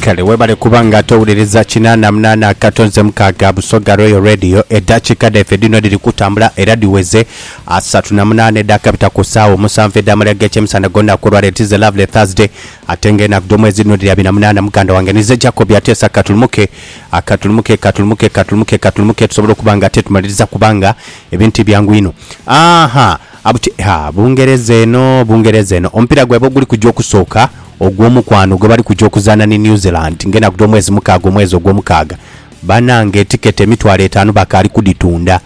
Kale webale kuba nga towuliriza kinaana munaana akato nze mukaaga Busoga Royal Radio. Eddakiika dhaife dhino dhiri kutambula era dhiweze asatu na munaana edhakabita ku saawa omusanvu edh'amalya g'ekyemisana gh'olunaku olwaleero. It is a lovely Thursday ate nga enaku dh'omwezi dhino dhiri abiri na munaana. Muganda wange ninze Jacob Ateesa katulumuke katulumuke katulumuke katulumuke katulumuke tusobole okuba nga tetumaliriza kubanga ebintu tibyangu inho. Aahaa. Abuti, Ha, Bungereza eno, Bungereza eno. Omupiira gwaibwe oguli kuja okusooka ogw'omukwano gwe bali kuja okuzaana ni New Zealand ng'enaku dh'omwezi mukaaga omwezi ogw'omukaaga. Banange etiketi emitwalo etaanu bakaali kudhitunda,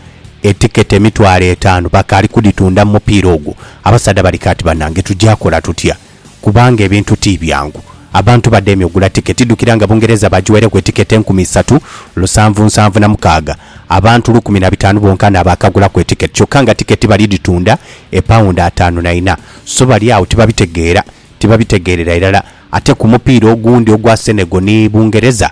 etiketi emitwalo etaanu bakaali kudhitunda mu mupiira ogwo. Abasaadha bali kaati banange tuja kola tutya? kubanga ebintu ti byangu. Abantu bademye ogula tiketi dukira nga Bungereza bagiwaireku etiketi enkumi isatu, lusanvu nsanvu na mukaaga, abantu lukumi na bitaanu bonka n'abaakagulaku etiketi kyokka nga tiketi bali dhitunda e pawundi ataanu na ina. So bali agho tibabitegeera, tibabitegeerera irala. Ate ku mupiira ogundi ogwa Senegal ni Bungereza,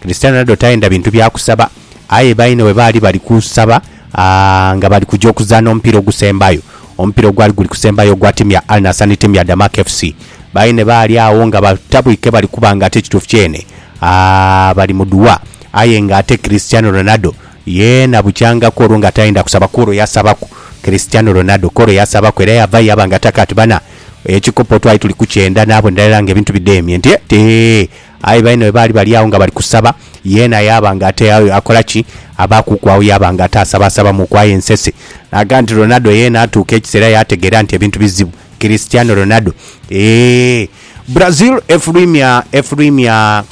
Cristiano Ronaldo tayenda bintu bya kusaba aye baine bwe baali bali kusaba nga bali kuja okuzaana omupiira ogusembayo. Omupiira ogwali guli kusembayo ogwa tiimu ya Al Nassr ni tiimu ya Damak FC. Baine baali agho nga batabwike bali kuba nga ate ekituufu kyene bali mu duwa aye nga ate Cristiano Ronaldo yeena bukyangaku olwo nga tayenda kusaba ku olwo yasabaku. Cristiano Ronaldo ku olwo yasabaku era yavayo yaba nga ataka ati, Bana, ekikopo twali tuli kukyenda naabo ndala era nga ebintu bidemye nti, Eti! Aye baine bwe baali bali agho nga bali kusaba, yeena yaaba nga ate aye akola ki? Abaakuuku agho yaaba nga ate asabaasabamuuku aye nsese. Naga nti Ronaldo yeena atuuka ekiseera yaategeera nti ebintu bizibu. Cristiano Ronaldo, Eehh. Brazil efulwimya efulwimya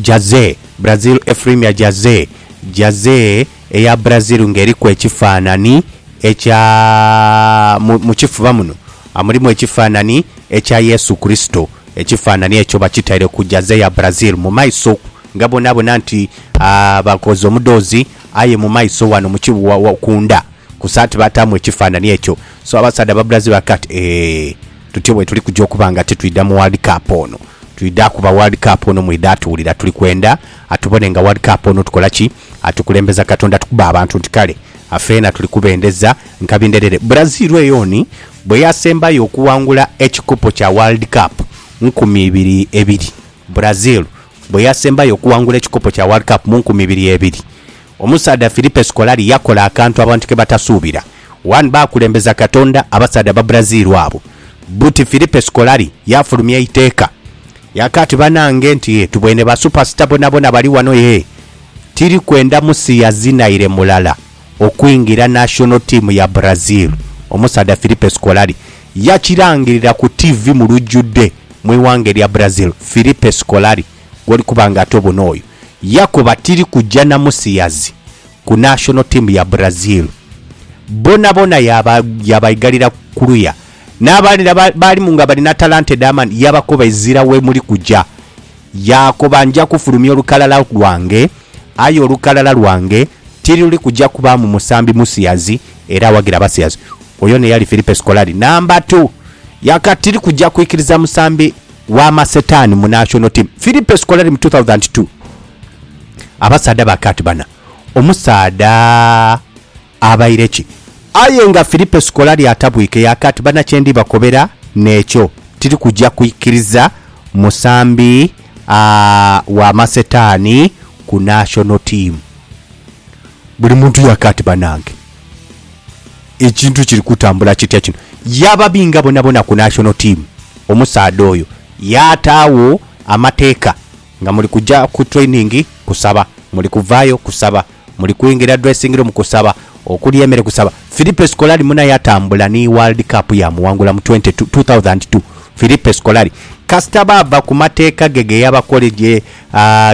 Jazee Brazil efulwimya Jazee Jazee. eya Brazil nga eriku ekifaanani ekya, mu, mu kifuba muno mulimu ekifaanani ekya Yesu Kurisito. Ekifaanani ekyo bakitaire ku jaze ya Brazil mu maiso okwo, nga bwonabwona nti, a, bakoze omudhoozi, aye mu maiso ghano mu ki, wa, wa, ku ndha ku saati baataamu ekifaanani ekyo. So abasaadha Ababrazil bakakoba bati, Eeh, tutyo bwe tuli kuja okuba nga titwidha mu World Cup ono. Twidha kuba World Cup ono mwidha tuwulira tuli kwenda. Atubone nga World Cup ono tukola ki? Atukulembeza Katonda tukube abantu nti kale feena tuli kubendeza nkabi ndherere. Brazil eyo ni bweyasembayo okuwangula ekikopo kya World Cup nkumi ibiri ebiri. Brazil bweyasembayo okuwangula ekikopo kya World Cup mu nkumi ibiri ebiri. Omusaadha Filipe Scolari yakola akantu abantu kebatasuubira. One baakulembeza Katonda abasaadha Ababrazil abo. Buti Filipe Scolari yafulumya eiteeka Yaka ati, Banange nti ye tubwene ba supasita bonabona bali wano ye tiri kwenda musi yazinaire mulala okwingira national team ya Brazil. Omusaadha Filipe Scolari yakirangirira ku TV mu lujudhe mu ighanga erya Brazil. Filipe Scolari gwoli kuba nga ate obona oyo yakoba tiri kuja na musiyazi ku national team ya Brazil bonabona yaba yabaigalira kuluya N'abalala abaalimu nga bali na talanta edh'amaani yaabakoba ezira we muli kuja. Yaakoba, Nja kufulumya olukalala lwange, aye olukalala lwange tiruli kuja kubaamu musambi musiyazi era awagira abasiyazi. Oyo n'eyali Filipe Scolari, namba tu. Yaka, Tiri kuja kwikiriza musambi wa masetaani mu nashono tiimu. Filipe Scolari mu two thousand and two. Abasaadha ba kaati bana. Omusaadha. Abaire ki? Aye nga Filipo sikola lyatabwika eyake ati, Bana kye ndi bakobera n'ekyo, tiri kuja kwikiriza musambi wa masetaani ku national team. Buli muntu yake ati, Banange ekintu kiri kutambula kitya kino? Yababinga bonabona ku national team omusaadha oyo, yaataagho amateeka nga muli kuja ku training kusaba, muli kuvaayo kusaba. Muli kwingira dressingroom kusaba, okulya emere kusaba. Filipe Scolari muna yatambula ni World Cup yamuwangula mu 2002. Filipe Scolari. Kasita baava ku mateeka ge ge yabakola ge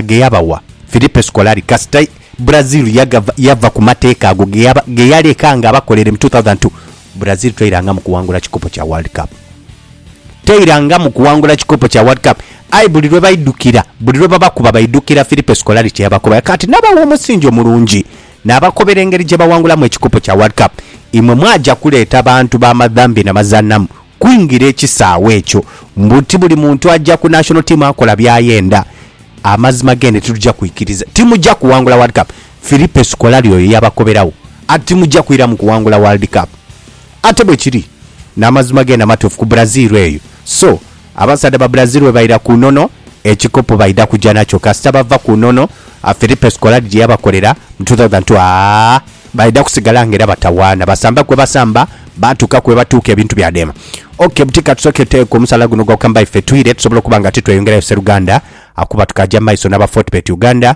ge yabawa. Filipe Scolari kasita Brazil yagava yava ku mateeka ago ge yaba ge yaleka nga abakolere mu 2002. Brazil teirangamu kuwangula kikopo kya World Cup. Teirangamu kuwangula kikopo kya World Cup. Aye buli lwe baidhukira, buli lwe babakuba baidhukira Filipe Scolari kye yabakoba. Kaati nabawa omusingi omulungi naabakobera engeri gye bawangulamu ekikopo kya World Cup. Imwe mwaja kuleeta bantu ba madhambi na mazanhamu kwingira ekisaawe ekyo mbu ti buli muntu aja ku national team akola byayenda. Amazima geenhe tituja kwikiriza. Timuja kuwangula World Cup. Filipe Scolari oyo yabakoberawo ati, Timuja kwiramu kuwangula World Cup. Ate bwe kiri. N'amazima geene amatuufu ku Brazil eyo. So, abasaadha ba Brazil bwe baira ku nono, ekikopo baidha kuja nakyo. Kasita bava ku nono, Filipe Scolari gye yabakolera mu two thousand two, aa, baidha kusigala nga era batawaana. Basamba kwe basamba, baatuuka kwe batuuka, ebintu byadema. Ok, buti ka tusooke tuteeku omusaala guno ogwa Kambai ffe twire, tusobole okuba nga titweyongerayo. Sseruganda akuba tukaaja mu maiso n'aba Fortebet Uganda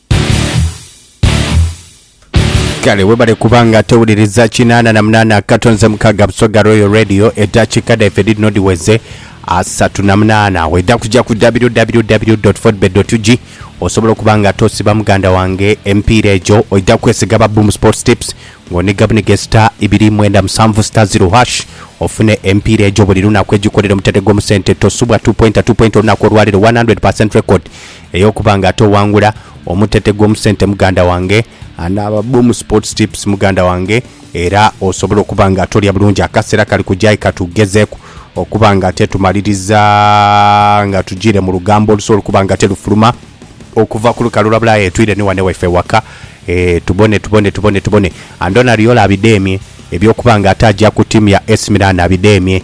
Kale webale kuba nga towuliriza kinaana na munaana akato nze mukaaga Busoga Royal Radio eddakiika dhaife dhidhino dhiweze asatu na munaana wedha kuja ku www.fodbet.ug osobola okuba nga tosiba muganda wange emipiira egyo oidha kwesiga aba Boom Sports Tips ng'oniga buniga star ibiri mwenda musanvu star zero hash ofune emipiira egyo buli lunaku egikolera omutendhe gw'omu sente tosubwa 2.2 point olunaku olwaleero 100% record Ey'okuba nga ate owangula omutete gw'omusente muganda wange, anaaba Boom Sports Tips muganda wange, era osobola okuba nga ate olya bulungi akasera kali kuja aye katugezeeku okuba nga ate tumaliriza nga tujiire mu lugambo olusobola okuba nga ate lufuluma okuva ku lukalu lwa Bulaaya etwire ni wane waife ewaka ee tubone tubone tubone tubone Andoni Ariola abidheemye eby'okuba nga ate aja ku tiimu ya AC Milan abidheemye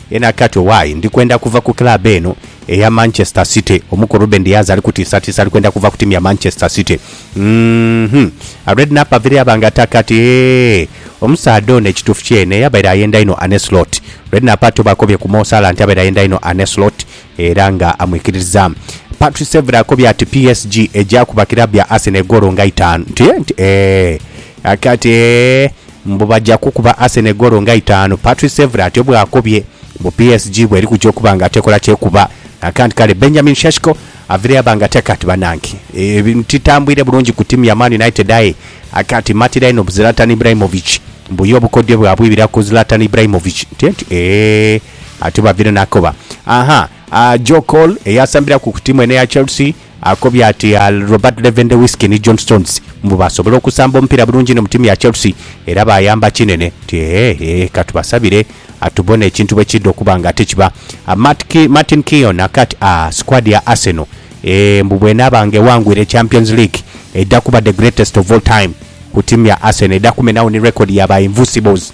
Ena Kato Why ndi kwenda kuva ku club eno eya Manchester City omu ku Ruben Dias ali kutiisatiisa ali kwenda kuva ku tiimu ya Manchester City uhmm a Redknapp avire yaba nga ataka ati eehh Omusaadha ono ekituufu kyene yabaire ayenda inho Arne Slot Redknapp ate oba akobye ku Mo Salah nti abaire ayenda inho Arne Slot era nga amwikiririzaamu Patrice Evra akobye ati PSG egya kuba club ya Arsenal egoolo nga itaanu nti eehh nti eehh Aka ati eehh Mbu baja kukuba Arsenal goolo nga itaanu, Patrice Evra atyo bw'akobye. Mbu PSG bw'eri kuja okuba nga tekola kyekuba. Akant kale Benjamin Sheshko avireyo aba nga ate kati banange ebintu titambwire bulungi ku tiimu ya Man United aye akati matira inho bu Zlatan Ibrahimovic. Mbu ye obukodyo bwe abwibira ku Zlatan Ibrahimovic nti enti eeh atyo bavire n'akoba. Ahaa, Joe Cole eyasambiraku ku tiimu eno eya Chelsea. Akobye ati Robert Lewandowski ni John Stones mbu baasobola okusamba omupiira bulungi inho mu tiimu ya Chelsea era baayamba kinene. Ti eehh ka tubasabire tubone ekintu bwe kiidha okuba nga ate kiba. Martin Keown akati aah squad ya Arsenal eeh mbu bw'enaaba nga ewangwire Champions League eidha kuba the greatest of all time ku tiimu ya Arsenal. Eidha kumenagho ni record ya ba Invuncibles.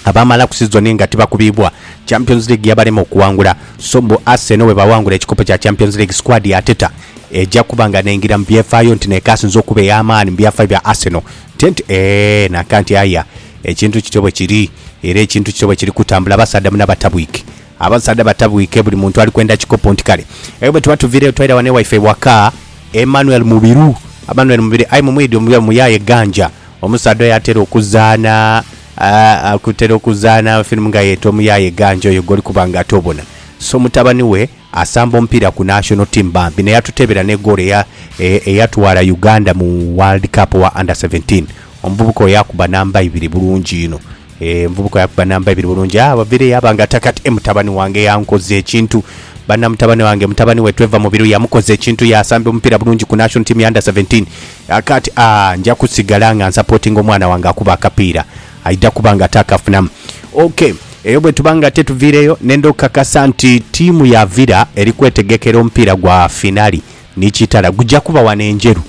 abaamalaku sizoni nga tibakubiibwa, Champions League yabalema okuwangula so mbu Arsenal bwebawangula ekikopo kya Champions League squad ya Arteta eja kuba nga n'engira mu byefaayo nti n'ekaasinze okuba ey'amaani mu byafaayo bya Arsenal. Tent eeh nankanti aya ekintu kityo bwekiri era ekintu kityo bwekiri kutambula basaadha munabatabwike. Abasaadha batabwike buli muntu ali kwenda kikopo nti kale aye bwetuba tuviireyo twaira wano ewaife ewaka Emmanuel Mubiru Amanuel Mubiri aye mumwidhi omubiru muyaaye ganja omusaadha oyo atera okuzaana aa akutera okuzaana firimu nga ye Tomuyaaye ganja oyo gwoli kuba nga ate obona so mutabani we asamba omupiira ku national team bambi naye atuteebera ne goolo eya e eyatwala Uganda mu world cup owa under seventeen omuvubuka oyo akuba namba ibiri bulungi inho. Envubuka yakuba namba ibiri bulungi. Aa, Wavire yaaba nga ata kati. E, mutabani wange yankoza ekintu. Banna mutabani wange, mutabani we tweva mu biru, yamukoza ekintu. Yaasamba omupiira bulungi ku National Team ya Under Seventeen. Aa, kati, aa, nja kusigala nga nsapootinga omwana wange akuba akapiira. Aidha kuba nga ate akafunamu. OK. Eyo bwe tuba nga ate tuviireyo, nenda okukakasa nti tiimu ya Villa eri kwetegekera omupiira gwa finali ni Kitara. Guja kuba wano e Njeru.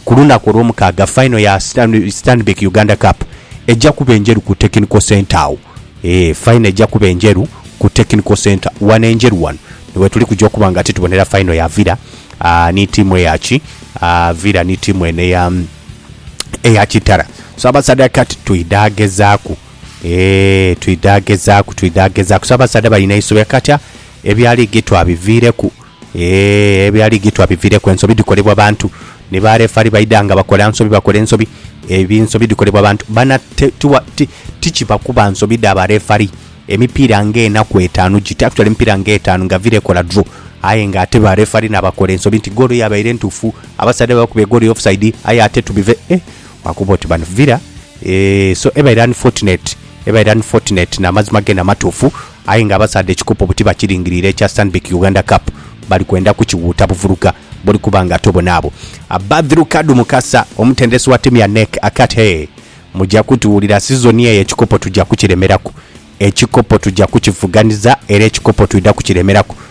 ku lunaku olwomukaaga final ya Stanbic Uganda Cup eja kuba enjeru ku Technical Centre agho eeh final eja kuba enjeru ku Technical Centre wano enjeru wano niwetuli kuja okuba nga titubonera final ya Villa aah ni tiimu eya ki aah Villa ni tiimu eno eya eya Kitara so abasaadha kati twidha gezaaku eeh twidha gezaaku twidha gezaaku so abasaadha balina isobi kati ebya liigi twabiviireku. Eeh ebyo aligi twabivireku ensobi dhikolebwa bantu ni ba refari baidha nga bakola nsobi bakola ensobi ebi nsobi dhikolebwa bantu bana tikiba kuba nsobi dha ba refari emipiira nga enaku etaanu giti actually emipiira nga etaanu nga villa ekola draw aye nga ate ba refari nabakola ensobi nti goolo yabaire ntuufu abasaadha be bakubye goolo ya offside aye ate tubive eeh wakuba oti bano villa eeh so ebaire unfortunate ebaire unfortunate namazima gene amatuufu. Aye nga abasaadha ekikopo buti bakiringirire ekya Stanbic Uganda Cup bali kwenda kukiwuuta buvuluga buli kuba nga ate obonaabo Badhrukadu Mukasa omutendesi wa tiimu ya NEC akat hee muja kutuwulira sizoni eyo ekikopo tuja kukiremeraku ekikopo tuja kukivuganiza era ekikopo twidha kukiremeraku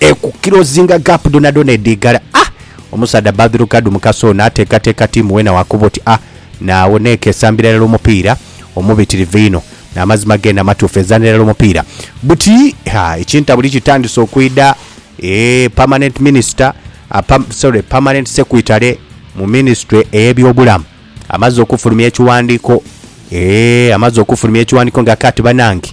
Ekukilozinga gap dhonadhona edhigala a omusaadha Badru Kadu Mukasa ono ateekateeka tiimu weena wakoba oti a naagho n'eka esambira irala omupiira omubitirivu einho. Amazima geene amatuufu ezaanira irala omupiira buti ha ekintabuli kitandise okwidha eeh Permanent Minister apa sorry Permanent Secretary mu Minisitule ey'ebyobulamu amaze okufulumya ekiwandiiko eeh amaze okufulumya ekiwandiiko nga kaati banange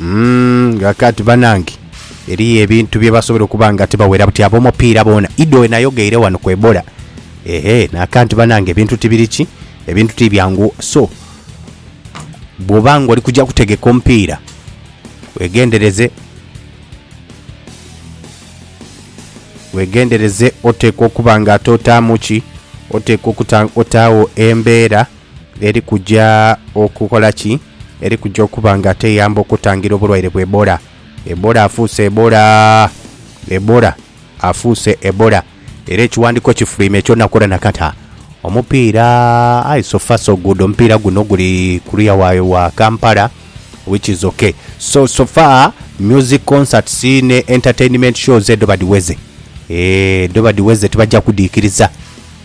Umm ghakati banange eriyo ebintu byebasobola okuba nga tibawera buti abomupiira boona idi wenayogeire wano ku Ebola ehe nakanti banange ebintu tibiri ki ebintu tibyangu so bwoba nga oli kuja kutegeka omupiira wegendereze wegendereze oteekwa okuba nga ate otaamu ki oteekwa okuta otaawo embeera eri kuja okukola ki? Eri kuja okuba nga teyamba okutangira obulwaire bwa Ebola. Ebola afuuse Ebola! Ebola afuuse Ebola! Era ekiwandiiko kifuluimya ekyo nakora nakata. Omupiira, aye so far so good, omupiira guno guli kuliya wa, wa Kampala which is okay. So, so far music concerts ne entertainment shows edho badhiweze. Eeh, dho badhiweze tibaja kudhiikiriza.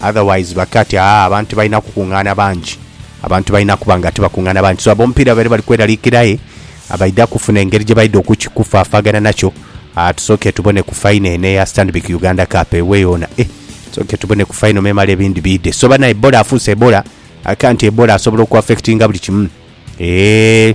Otherwise bakati aah abantu balina kukungaana bangi, abantu balina kuba nga tibakungaana bangi so ab'omupiira babeire bali kweraliikirira aye abaidha kufuna engeri gye baidha okukikufaafaagana nakyo. Aah tusooke tubone ku faino eno eya Stanbic Uganda Cup ewe yoona eh tusooke tubone ku faino memale ebindi biidhe. So banaye Ebola afuuse Ebola, I can't Ebola asobola okuaffectinga buli kimu eeh.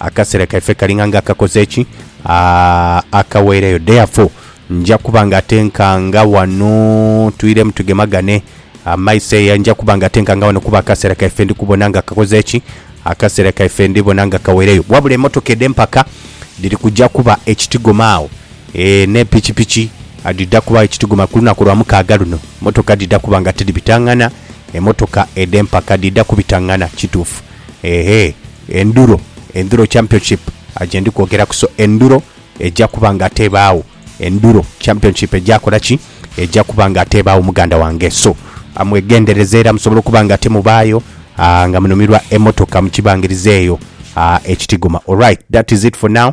Akasera kaife kalinga nga akakoze ki? Akaweirayo. Therefore, nja kuba nga atenkanga wano, twiremu tugemagane amaiso eya, nja kuba nga atenkanga wano kuba akasera kaife ndi kubona nga kakoze ki? Akasera kaife ndi bona nga kaweireyo. Wabula emotoka edh'empaka dhiri kuja kuba ekitigoma agho, ee, ne pikipiki dhidha kubagho ekitigoma ku lunaku lwa mukaaga luno. Motoka dhidha kuba nga tidhibitangana, emotoka edh'empaka dhidha kubitangana. Kituufu. Ehe enduro enduro championship aje ndi kwogera kuso enduro eja kuba nga ate ebaawo enduro championship eja kola ki eja kuba nga ate ebaawo muganda wange so amwegendereze era musobola okuba nga ate mubaayo ah, nga munumirwa emotoka mukibangiriza eyo ah, ekitigoma alright that is it for now